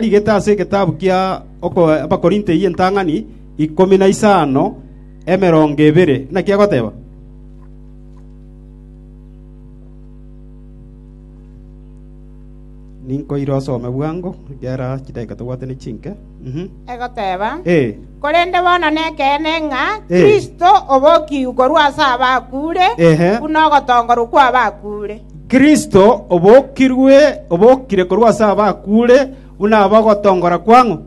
Rigete ase egetabu kia Abakorinto eyio entang'ani ikomi na isano, emerongo ebere, naki agoteba, Ninkoire osome bwango, ekiagera chidakika tobwate ne chinke. Egoteba, Korende bono nekeene ng'a Kristo obokigwe korwa ase abakure, buna ogotongorwa kw'abakure. Kristo obokirwe, obokire korwa ase abakure, buna abe ogotongora kwang'o?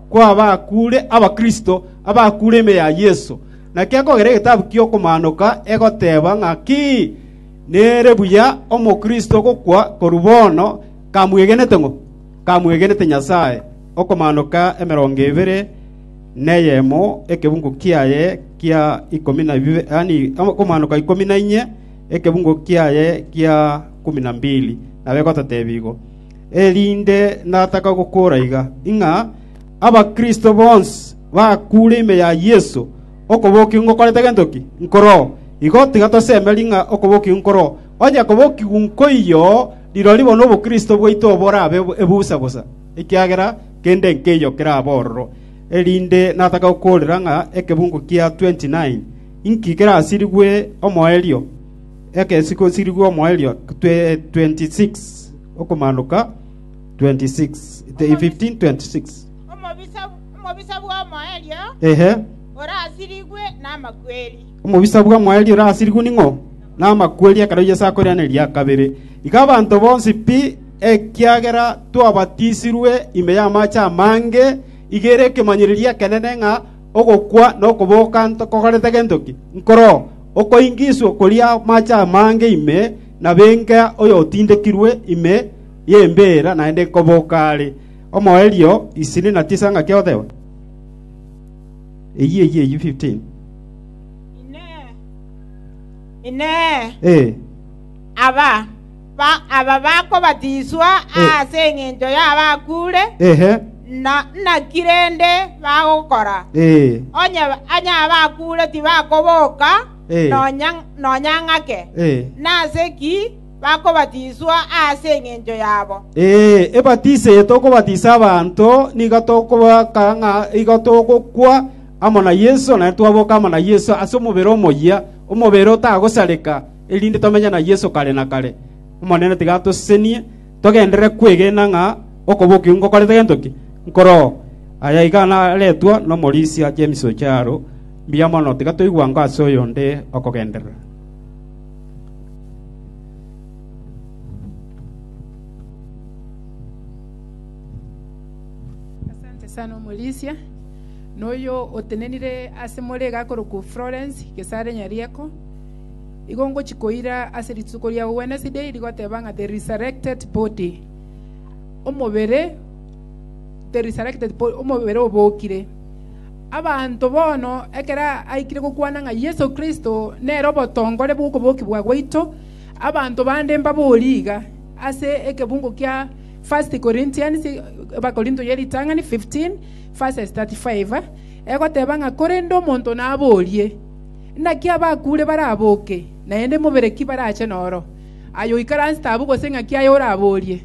kw'abakure, Abakristo, abakure ime ya Yeso. Naki ekogera egetabu ki'Okomaanoka egoteba ng'a ki? Nere buya Omokristo gokwa korwa bono, kamwegenete ng'o? kamwegenete Nyasae, okomaanoka emerongo ebere neyemo ekebungo kiaye kia ikomi na bibere, yaani okomaanoka ikomi na inye ekebungo kiaye kia kumi na mbili, nabe gototeebia igo. Erinde nataka gokora iga, ng'a Abakristo bonsi bakure ime ya Yeso, okobokigwa ngokorete gento ki? Nkoroo. Igo tiga tosemerie ng'a okobokigwa nkoroo, onye kobokigwa nkoiyo Rirorio bono obokristo bwaito borabe ebusa bosa, ekiagera kende nkeiyo kerabe ororo. Erinde natake gokoorera ng'a ekebungo kia 29 inki kerasirigwe omoerio, ekesi gosirigwe omoerio 26 okomaanoka 15:26. Omobisa bwa mwaerio orasirigwe ning'o? Namakweri ekero Yeso akorera eria kabere. Iga abanto bonsi pi, ekiagera twabatisirwe ime y'amache amange, iga ere ekemanyererio ekenene ng'a ogokwa na okoboka ntokogorete gento ki. Nkoro, okoingiswa koria amache amange ime nabenga oyotindekirwe ime y'embeera naende nkoboka are. Omoerio isini na tisa ng'aki ogoteba? Inee! Aba bakobatiswa ase engencho y'abakuure, naki rende bagokora? Onye abakuure tibakoboka, nonya ng'ake! Nase ki? bakobatiswa aase engencho yabo. Ee, ebatiso eye tokobatisa abanto nigo tokobaka ng'a igo togokwa amo na Yeso, naende twaboka amo na Yeso ase omobere omoyia, omobere otagosareka, erinde tomenye na Yeso kare na kare. Omonene tiga atosesenie togenderere kwegena ng'a okobokigwa ngokorete gento ki? Nkoroo. Aya iga naretwa n'omorisia James Ojaro. Mbuya mono, tiga toigwe ango ase oyonde okogenderera. Asante sana omorisia noyo otenenire ase more iga akorokwa Florence Gesare Nyarieko igo ngochi koira ase rituko ria Wednesday rigoteba ng'a the resurrected body omobere the resurrected body omobere obokire Abanto bono ekero aikire gokwana ng'a Yeso Kristo nere obotongore bw'okobokigwa gwaito, abanto bande mbaborie iga ase ekebungo kia 1 Corinthians 15:35, egoteba ng'a korende omonto naborie, Naki abakure baraboke, naende mobere ki barache noro? Aye oikaransete abwo gose ng'aki aye oraborie?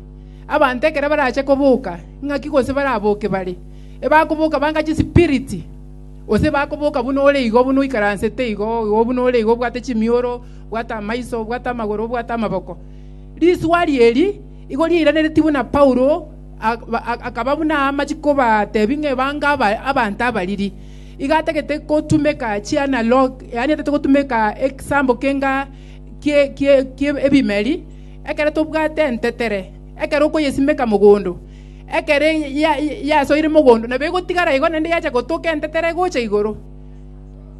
Abanto ekero barache koboka, ng'aki gose baraboke bare? Ebakoboka banga chisipiriti, gose ebakoboka buna ore igo, buna oikaransete igo, igo buna ore igo, obwate chimioro, obwate amaiso, obwate amagoro, obwate amaboko. Riswari eri igo riairanereti buna Paulo ak- ba- ak- akaba buna amachi kobatebi ng'a ebange aba- abanto abariri. Iga atagete gotumeka chianalog, yaani atagete gotumeka egesambo kenga kie- kie- kie ebimeri, ekero tobwate entetere, ekero okoyesimeka mogondo, ekero ya- ya- ya- yasoire mogondo, nabo egotigara igo naende yacha gotoka entetera egocha igoro.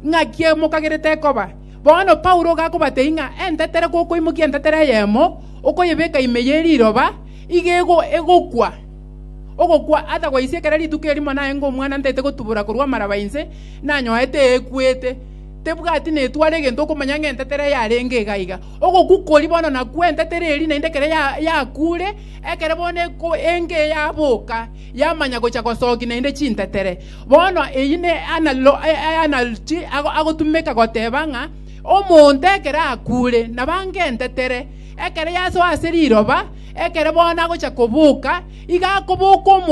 Ng'aki eye mokagerete ekoba. Bono Paulo iga akobatebia ng'a entetera gokoimokia entetera eyemo, okoyebeka ime ye riroba, iga ego- egokwa. Ogokwa atagwaisi ekero rituko erimo naye ng'a omwana ntaete gotubura korwa amaraba inse, nanyoete eekwete. Tebwati netware egento okomanya ng'a entetera yarenge iga iga. Ogokwa koria bono nakwo entetera eria naende ekero ya- yakure, Ekero bono eko enge yaboka, yamanya gocha gosokia naende chintetere. Bono eyio ne analo- e- e- analogy ago- agotumeka goteba ng'a omonto ekero akuure, nabange entetere, ekero yasoa ase riroba, ekero bono agocha koboka, iga akoboka omonto